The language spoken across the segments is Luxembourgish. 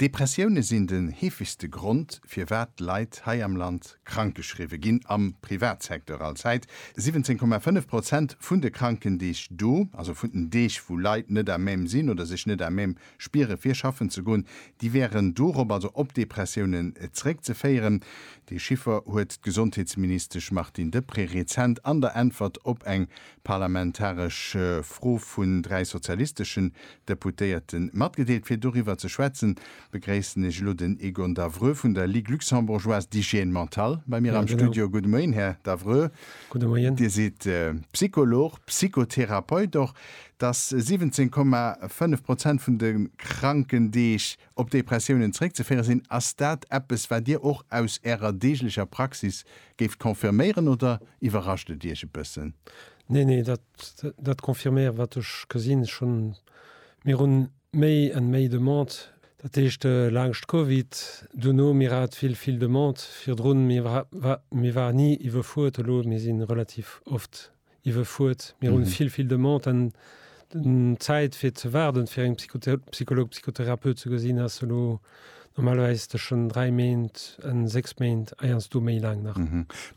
Depressioune sinn den heefegste Grond, firwat Leit hei am Land krankgeschriwwe ginn, am Privatsecteur all Zäit. 17,5 Prozent vun de Krankendeeg do, also vun den Deeg, wou Leit net à même sinn oder sech net à même spiere fir schaffen ze goen, déi wäeren dorop, also op Depressiounen, zeréckzeféieren. Dee Chiffer huet d'Gesondheetsministesch Martine Deprez rezent an der Äntwert op eng Parlamentaresch Fro vun dräi sozialisteschen Deputéierte matgedeelt. Fir doriwwer ze schwätzen, begréissen ech elo den Egon Davreux vun der Ligue luxembourgeoise d'hygiène mentale bei mir am Studio. Gudde Moien, Här Davreux. Gudde Moien. Dir sidd Psycholog, Psychotherapeut och. Dass 17,5 Prozent vun de Krankendeeg Op Depressiounen zeréckzeféiere sinn. Ass dat eppes, wat Dir och aus Ärer deeglecher Praxis géift confirméieren oder iwwerrascht et Iech e bëssen? Neen, neen, dat, dat confirméiere wat ech gesinn. Ech hunn, mir hunn méi an méi Demande, dat heescht laanscht Covid, dono, mir hat vill, vill Demande virdrun, mir, mir waren ni iwwerfuert. Elo, mir si relativ oft iwwefuert. Mir hunn vill, vill Demande an d'Zäit fir ze waarden fir eng Psychologue, Psychotherapeut ze gesinn ass elo normalerweis tëschen 3 Méint an 6 Méint, eiersdo méi laang nach.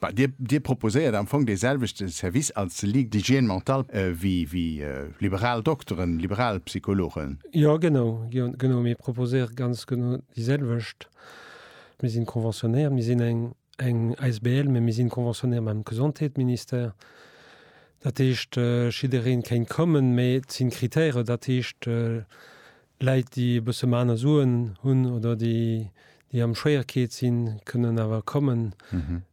Bah, Dir, Dir proposéiert am Fong dee selwechte Service als Ligue d'hygiène mentale wéi, wéi liberal Dokteren, liberal Psychologen? Jo, genau, jo, genau. Mir proposéiere ganz genau déi selwecht. Mir si conventionnéiert, mir sinn eng. eng Asbl, mä mir sinn conventionnéiert mam Gesondheetministère, dat heescht jiddereen kéint kommen, mä et sinn Kritären, dat heescht Läit déi e bësse méi aner Suen hunn oder déi déi am Schwéierkeet sinn kënnen awer kommen.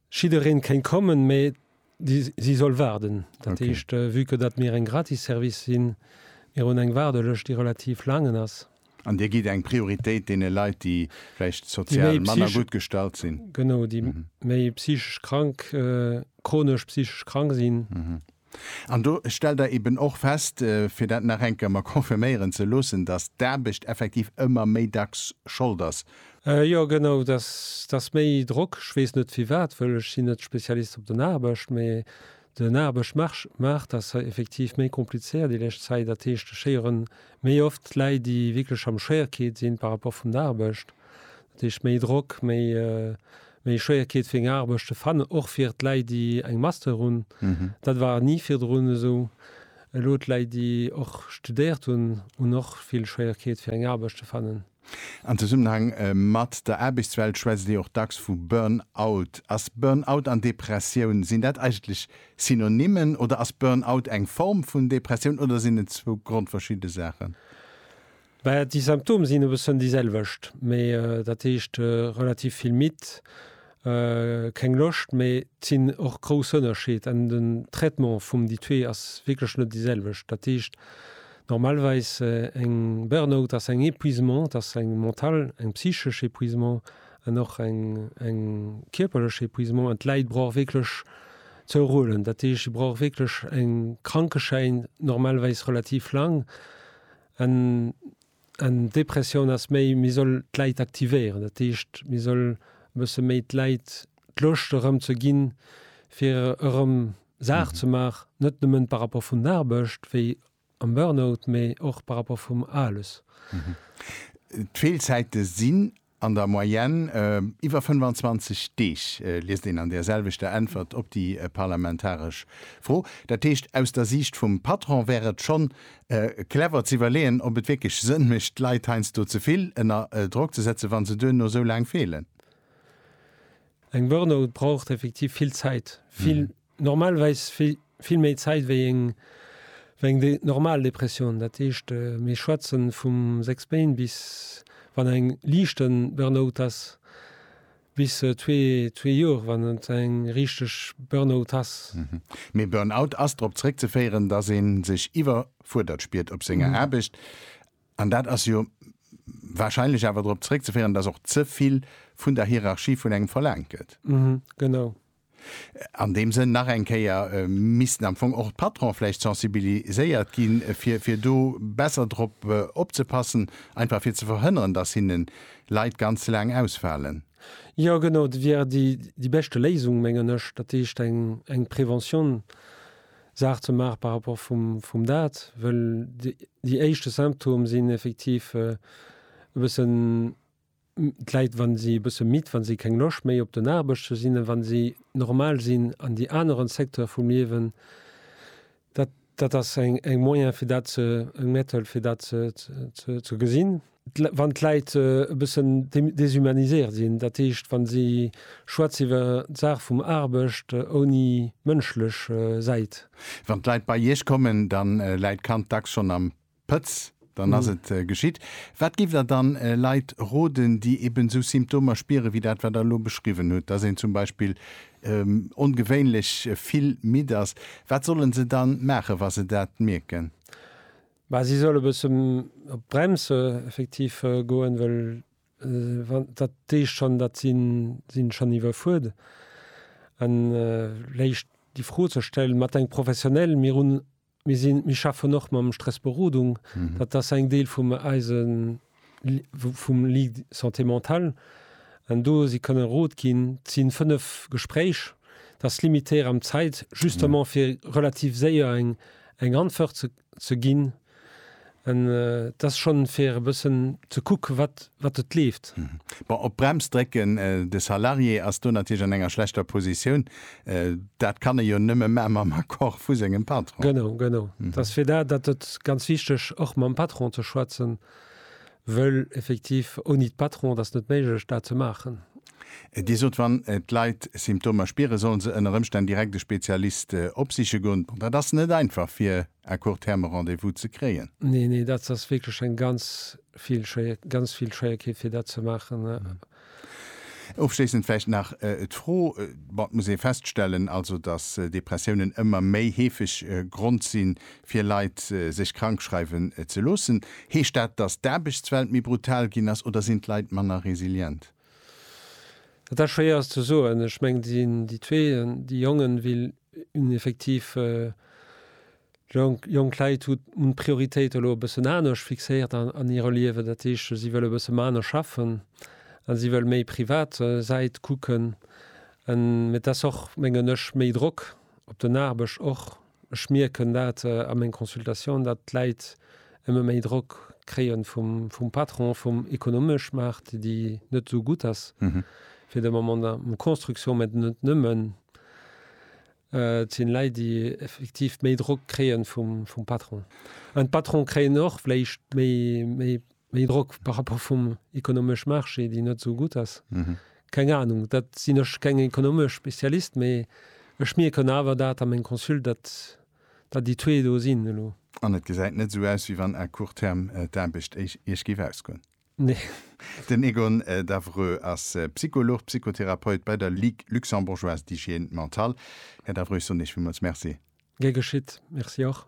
Jiddereen kéint kommen, mä Si soll waarden. Dat heescht, vue que datt mir eng Gratisservice sinn, mir hunn eng Waardelëscht, déi relativ laangen ass. An Dir gitt eng Prioritéit deene Leit, déi vläicht sozial manner gutt gestallt sinn. Genau, déi méi psychesch krank, chronesch psychesch krank sinn. An do stellt Der eeben och fest, fir dat nach eng Kéier mer confirméieren ze loossen, datt d'Aarbecht effektiv ëmmer méi dacks Schold ass Jo genau, et ass méi Drock. Ech weess net firwat, well ech sinn net Spezialist op den Aarbecht, mee den Aarbechtsmaart ass hei effektiv méi komplizéiert déi lescht Zäit. Dat heescht, ech héieren méi oft d'Läit, déi wierklech am Schwéierkeet sinn par rapport vun der Aarbecht. Dat heescht méi Drock, méi méi Schwéierkeet fir eng Aarbecht ze fannen, och fir d'Läit, déi eng Master hunn. Dat war ni virdrun esou. Elo d'Läit, déi och studéiert hunn, hunn och vill Schwéierkeet fir eng Aarbecht ze fannen. An Zesummenhang mat der Aarbechtswelt schwätzt ee och dacks vu Burn-out. Ass Burn-out an Depressioun, sinn dat eigentlech Synonymen oder ass Burn-out eng Form vun Depressioun oder sinn et zwou grondverschidde Saachen? Bah, déi Symptome sinn e bëssen déi selwecht, mee dat heescht relativ vill midd keng Loscht mee sinn och grouss Ënnerscheed an den Traitement vum déi zwee ass wierklech net déi selwecht. Dat heescht normalweis eng Burnout ass eng Epuisement, dat ass eng mental, eng psychesch Epuisement an och eng eng kierperlech Epuisement an d'Läit brauch wierklech ze erhuelen. Dat heescht si brauch wierklech eng Krankeschäin normalweis relativ laang an Eng Depressioun ass méi, mir soll d'Läit aktivéieren. Dat heescht, mir soll e bësse méi d'Läit d'Loscht erëm ze ginn, fir erëm Saach ze maachen, net nëmmen par rapport vun Aarbecht, wéi am Burnout, mee och par rapport vum ALUS. D'Feelzäite sinn An der Moyenne iwwer 25 Deeg, liest een an där selwechter Äntwert op déi parlamentaresch Fro. Dat heescht, aus der Siicht vum Patron wär et schonn clever z'iwwerleeën, ob et wierklech Sënn mécht, d'Leit heiansdo ze vill ënner Drock ze setzen, wa se duerno esou laang feelen. Eng Burn-out braucht effektiv vill Zäit, vill normalweis vill méi Zäit wéi eng normal Depressioun. Dat heescht, mir schwätze vum sechs Méint bis, wann eng liichte Burnout ass, bis zwee Joer, wann et eng richteg Burnout ass. Mee Burnout ass drop zeréckzeféieren, datt ee sech iwwerfuerdert spiert op senger Aarbecht. An dat ass jo warscheinlech awer drop zeréckzeféieren, datt och ze vill vun der Hierarchie vun engem verlaangt gëtt. Genau. An deem Sënn nach eng Kéier, missten am Fong och d'Patronen vläicht sensibiliséiert ginn, fir do besser drop opzepassen, einfach fir ze verhënneren, dass hinnen Leit ganz laang ausfalen. Jo, genau, dat wier déi beschte Léisung, mengen ech, dat heescht eng Preventionssaach ze maachen par rapport vum dat, well déi éischte Symptome sinn effektiv e bëssen, d'Leit wann si e bësse midd, wann si keng Loscht méi op den Aarbecht ze sinn, wann si normal sinn an déi aneren Secteur vum Liewen, dat dat ass eng eng Moyen fir dat ze eng Method fir dat ze ze ze gesinn. Wann d'Leit e bëssen déshumaniséiert sinn, dat heescht wann si schwätz iwwer d'Saach vum Aarbecht ouni mënschlech Säit. Wann d'Leit bei Iech kommen, dann läit d'Kand dacks schonn am Pëtz, dann ass et geschitt. Wat giff Der dann Leit roden, déi eben esou Symptomer spieren, wéi dat wat Der elo beschriwwen hutt, dass een zum Beispill ongewéinlech vill midd ass? Wat solle se dann maachen, wa se dat mierken? Bah, si solle bësse op d'Brems effektiv goen, well wann dat heescht schonn, datt si sinn schonn iwwerfuert, an léicht déi Fro ze stellen, mat eng professionell, mir hunn Mir sinn, mir schaffen och mam Stress Berodung. Dat ass eng Deel vum eise, vum Ligue Santé Mentale. An do si kënne Rot ginn. Et sinn 5 Gespréich. Dat ass limitéiert am Zäit, justement fir relativ séier eng Antwort ze ginn. Et ass schonn fir e bëssen ze kuck wat wat et leeft. Bon, op d'Brems drécken, de Salarié ass do natierlech an enger schlechter Positioun. Dat kann e jo nëmme maa mam Accord vu sengem Patron. Genau, genau. Et ass fir dat dat et ganz wichteg och mam Patron ze schwätzen, wëll effektiv ouni d'Patron et ass net méiglech dat ze maachen. Dir sot wann d'Leit Symptomer spieren, sollen se ënner Ëmstänn direkt e Spezialist opsiche goen. Bon, dat ass net einfach fir à court terme Rendez-vous ze kréien. Nee, nee, dat ass wierklech eng ganz vill Schwéier, ganz vill Schwéierkeet fir dat ze maachen. Ofschléissend vläicht nach d'Fro, bon, et muss ee feststellen, also datt Depressiounen ëmmer méi heefeg Grond si fir Leit sech krank schreiwen ze loossen. Heescht dat, datt d'Aarbechtswelt méi brutal ginn ass oder sinn d'Leit manner resilient? Dat ass schwéier ze soen. Ech mengen, déi sinn, déi zwee, déi Jongen, wéi un effektiv jonk Leit hu hunn d'Prioritéit elo e bëssen anescht fixéiert an hirem Liewen. Dat heescht, si wëlle e bësse maner schaffen a si wëlle méi privat Säit kucken. Mee et ass och, mengen ech, méi Drock op den Aarbecht och. Ech mierken dat a meng Consultatioun, datt d'Läit ëmme méi Drock kréie vum Patron, vum ekonomesch Maart, déi net esou gutt ass fir de Moment an der Construction, mä net nëmmen. Et sinn Läit, déi effektiv méi Drock kréie vum Patron. An d'Patrone kréien och vläicht méi Méi Drock par rapport vum économësch Marché, déi net esou gutt ass. Keng Ahnung, dat sinn ech keng économësch Spezialist, mee ech mierken awer dat a meng Consulte, dat dat déi zwee do sinn elo. An et gesäit net esou aus, wéi wann à court terme d'Aarbecht Iech géif ausgoen. Nee. Den Egon Davreux ass Psycholog, Psychotherapeut bei der Ligue Luxembourgeoise d'Hygiène Mentale. Här Davreux, ech soen Iech villmools Merci. Gär geschitt. Merci och.